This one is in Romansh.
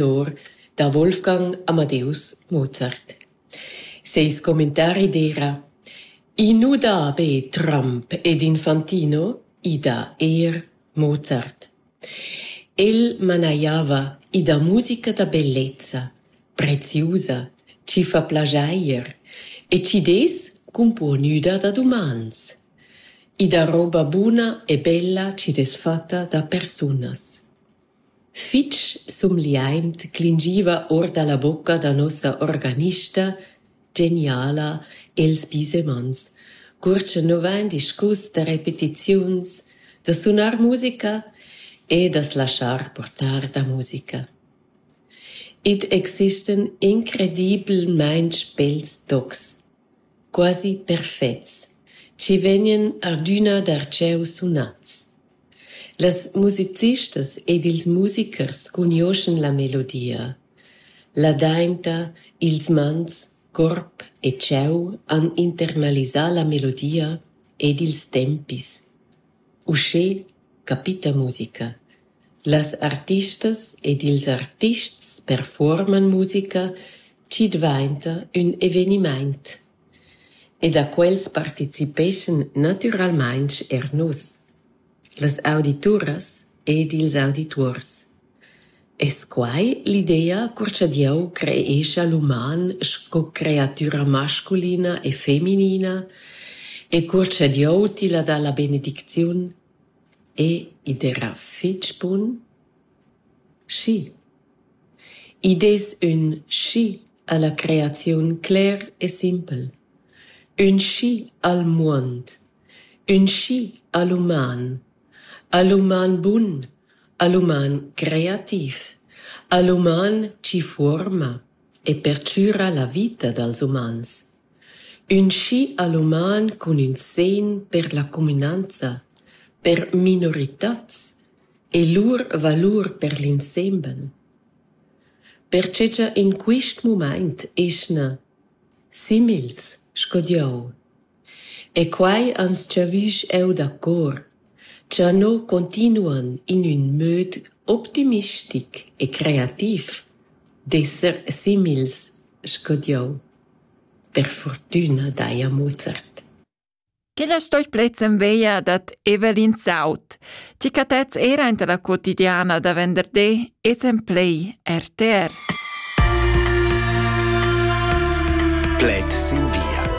tenor da Wolfgang Amadeus Mozart. Seis commentari d'eira «I nu dà be Trump ed Infantino, i dà eir Mozart». El manajava i da musica da bellezza, preziusa, chi fa plajair e chi dess cumpuonüda da dumans. I da roba buna e bella chi dess fatta da persunas. Fitg sumgliaint clingiva our da la bocca da nossa organista geniala Els Bisemans, cur cha nu vain discus da repetiziuns, da sunar musica e da's laschar portar da musica. Id existan incredibelmaing bels tocs, quasi perfets, chi vegnan adüna darcheu sunats. Las musicistas ed ils musicers cugnuoschan la melodia, ladainta, ils mans, corp e cheu han internalisà la melodia ed ils tempis. Uschè capita musica. Las artistas ed ils artists perfuorman musica chi dvainta ün evenimaint. E da quels participeschan natüralmaing eir nus, las audituras ed ils audituors. Es quai l'idea cur cha Dieu creescha l'uman sco creatüra masculina e feminina e cur cha Dieu tilla dà la benedicziun? E id esa fich bun? Schi. Id es ün schi. ha la creaziun cler e simpel: ün schi al muond, ün schi al uman, al uman bun, al uman creativ, al uman chi fuorma e perchüra la vita dals umans, ün schi al uman cun ün segn per la cumünanza, per minoritats e lur valur per l'insembel. Pertgei che in quist mumaint eschna simils sco Dieu. E quai ans giavüsch eu da cor, cha no continuan in ün möd optimistic e creativ d'esser simils sco Dieu. Per furtüna daja Mozart. Quella stoi plezzen veia dad Evelyn Saut, tgi catets era inta la quotidiana da venderdi esen plei RTR. Pled sin via.